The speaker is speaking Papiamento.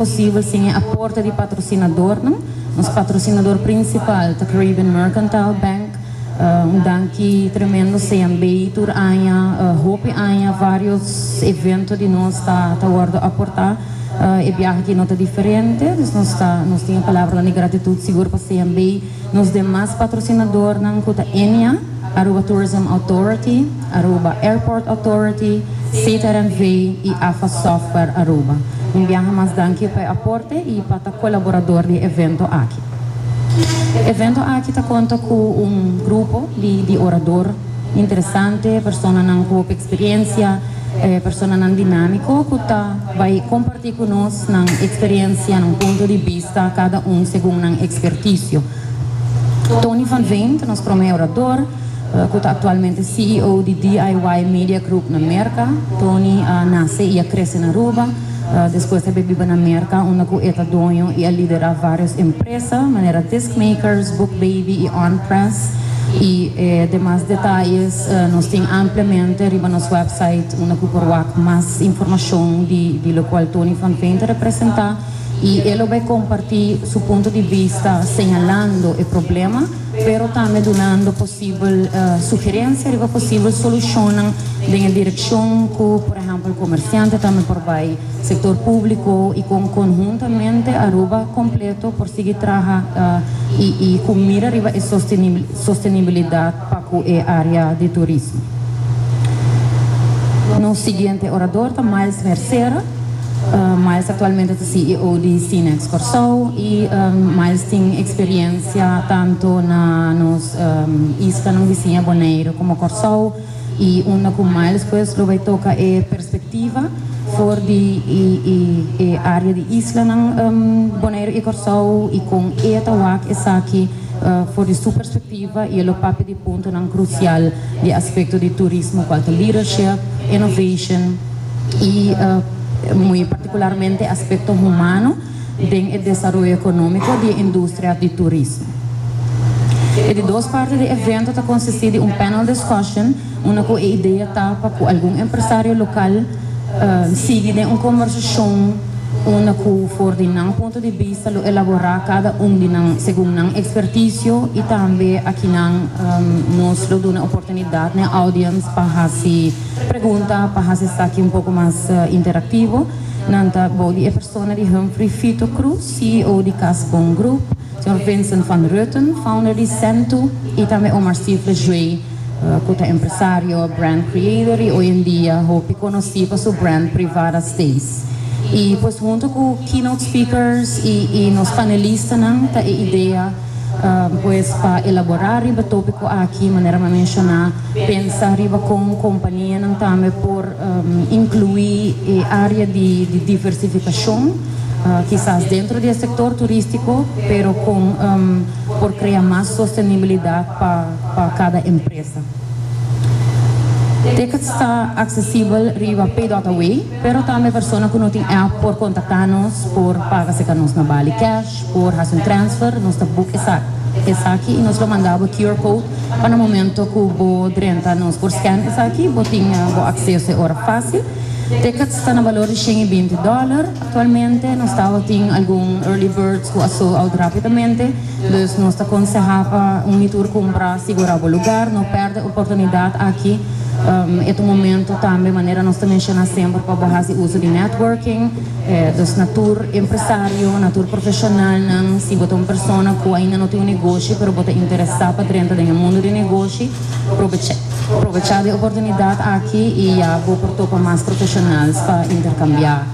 posibel sin e aporte di patrosinadornan. Nos patrosinador prinsipal ta Caribbean Mercantile Bank. Un danki tremendo sea bay tur aña, hopi aña varios evento di nos ta ta wordo aporta. E biaha aki no ta diferente, dus nos ta nos tin e palabranan di gratitud sigur pa sea bay. Nos demas patrosinadornan ku ta EMEA, Aruba Tourism Authority, Aruba Airport Authority, CTRNV i AFA Software Aruba. Un biaha mas danki pa e aporte i pa ta kolaborador di e evento aki. E evento aki ta konta ku un grupo di di orador interesante, personanan ku hopi eksperensia, personanan dinámiko ku ta bai kompartí ku nos. Nosotros nan experiencia, nan punto di bista, cada un segun nan experticio. Tony van Veen ta nos prome orador, cu ta actualmente CEO di DIY Media Group na Merca. Tony a nace y a crece na Aruba, despues a bay biba na Merca unda cu e ta doño y a lidera varios empresa manera Disc Makers, Book Baby y On Press. Y e demas detalles nos tin ampliamente riba nos website. Una cu por wak mas informacion di locual Tony Van Veen ta representa y e lo bay comparti su punto di vista señalando e problema pero tambe dunando posibel sugerencia riba posibel solucionnan den e direccion cu por ehempel comerciante tambe por bay, sector publico y con conhuntamente Aruba completo por sigui traha y cu mira riba e sostenibilidad. pa ku e área di turismo. Nos siguiente orador ta Miles Mercera. Miles aktualmente ta CEO di Cinex Kòrsou i Miles tin eksperiensia tantu na nos islanan bisiña Boneiru komo Kòrsou i unda ku Miles pues lo bai toka e perspektiva for di e área di islanan Boneiru i Kòrsou i kon e ta wak esaki for di su perspektiva. Activa y e lo papia di puntonan crucial di aspecto di turismo cual ta leadership, innovation y muy particularmente aspecto humano den e desaroyo economico di e industria di turismo. E di dos parte di e evento ta consisti di un panel discussion unda ku e idea ta pa ku algun empresario lokal sigui den un kombersashon unda ku for di nan punto di bista lo elaborá kada un di nan segun nan ekspertisio i tambe akinan nos lo duna oportunidat n'e audiens pa hasi pregunta pa hasi esaki un poko mas interaktivo nan ta bou di e persona di Humphrey Fito Cruz CEO di Casbon Group. Sor Vincent van Rutten, founder di Sentu, y tambe Omar Stifler Jue, cu ta empresario, brand creator y hoy en dia hopi conoci pa su brand Privada Stays. Y pues hunto cu keynote speakers y nos panelistanan ta e idea pues pa elabora riba topico aki manera m'a menciona. Pensa riba kon kompanianan tambe por inkluí e área di diversifikashon, kisas dentro di e sektor turístiko, pero kon por krea mas sostenibilidat pa kada empresa. Tickets ta aksesibel riba PayDotAway. Pero tambe persona ku no tin app por kontaktá nos por paga serka nos na Bali kèsh, por hasi un transfer, nos ta buk esaki esaki i nos lo mandá bo QR code pa na momento ku bo drenta nos por scan esaki bo tin bo akseso e ora fásil. Tickets ta na balor di shen i binti dòler aktualmente, nos tabatin algun early birds ku a sold out rápidamente. Dus nos ta konsehá pa un i tur kumpra sigurá bo lugar. No pèrdè oportunidat aki. E ta un momentu tambe, manera nos ta menshoná semper, pa bo hasi uso di networking. Dus na tur empresario, na tur profeshonalnan, si bo ta un persona ku ainda no tin un negoshi pero bo ta interesá pa drenta den e mundu di negoshi, probechá probechá di e oportunidat aki i ya bo por topa mas profeshonals pa interkambiá.